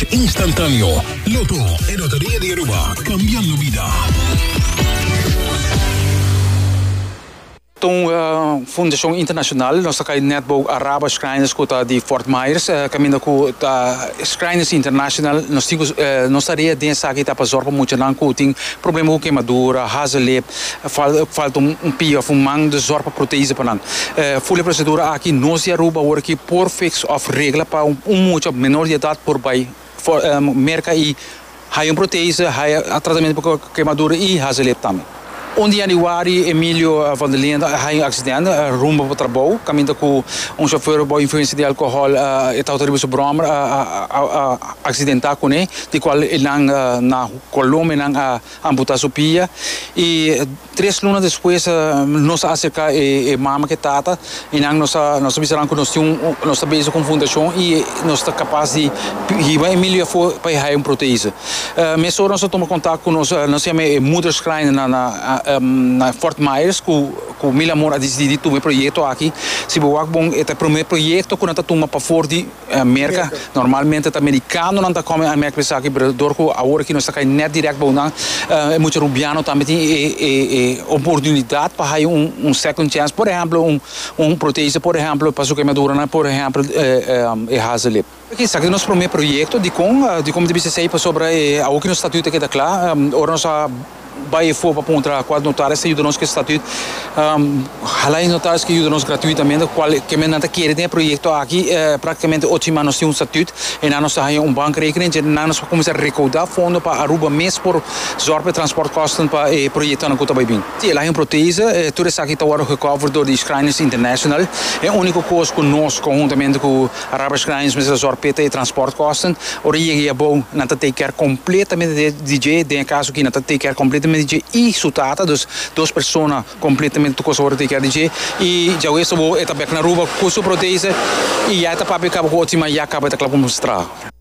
Instantáneo, Lotto e Loteria di Aruba, cambiando vida. Ta un fundacion internacional, nos ta cay net bou Araba Shriners cu ta di Fort Myers, caminda cu ta Shriners International, nos tin cu nos ta rea den esaki ta pa zorg pa muchanan cu tin problema cu quemadura, hazel lip, Falta un pia of un man di zorg pa proteise pa nan. Ful e prosedura aki no si Aruba awor aki por fix of regla pa un mucha of menor di edat por bai merka i haya un proteise, haya tratamentu pa kemadura i haci lep tambe. Un di Januari Emilio van der Linden a haya un accidente rumbo pa trabou caminda cu un chauffeur bou influencia di alcohol e tawata riba su brommer a accidenta cune di cual e nan na Colombia nan a Amputasopia y tres luna despues nos a acerca e mama cu e tata y nan nos a nos a bisa nan cu nos tin nos ta bezig cu un fundacion y nos ta capaz di hiba Emilio afo pa e haya un protese mes ora nos a tuma contact cu nos nos yama e moeder schreiner na na na Fort Myers cu cu mil amor a dicidi di tuma e proyecto aki si bo wak bon e ta e primer proyecto cu nan ta tuma pa for di Merka, normalmente ta merikanonan ta kòm e mèkp esaki, pero dor ku awor aki nos ta kai nèt dirèk bou nan, e mucha rubiano tambe tin e oportunidat pa hai un second chance, por ehèmpel un protese, por ehèmpel pa su kemaduran, por ehèmpel e hazelip. Esaki ta nos promé proyekto dikon, dikon ta bisa esei, pasobra awor ki nos statuut a keda kla, ora nos a Bai efo pa pon un traha kual notaris ta yuda nos ku e statüt. Hala e notaris ke yuda nos gratuitamente kual ke men nan ta kere den e proyekto aki. Praktikamente ocho siman nos tin un statüt. Einan nos ta haña un bankrekening dje nan nos por kuminsá rekaudá fondo pa Aruba mes por zòrg pa e transportkòsten pa e proyektonan ku ta bai bin. Ti el haña un protese. Tur esaki ta wòrdu gekover dor di Schrijners International. E úniko kos ku nos konhuntamente ku Arabisch Lines mester zòrg p'e ta e transportkòsten. Ora e yega ei abou, nan ta take care kompletamente di dje, den e kaso aki nan ta take care kompletamente di dje i su tata, dus dos persona kompletamente tur kos a wòrdu take care di dje. I djawees abou e ta bèk na Aruba ku su protese i ya e ta papia kaba ku otro, sima ya kaba e ta kla ku mester traha.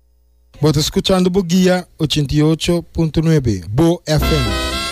Bo ta scuchando Bo Guia ochenta i ocho punto nuebe, Bo FM.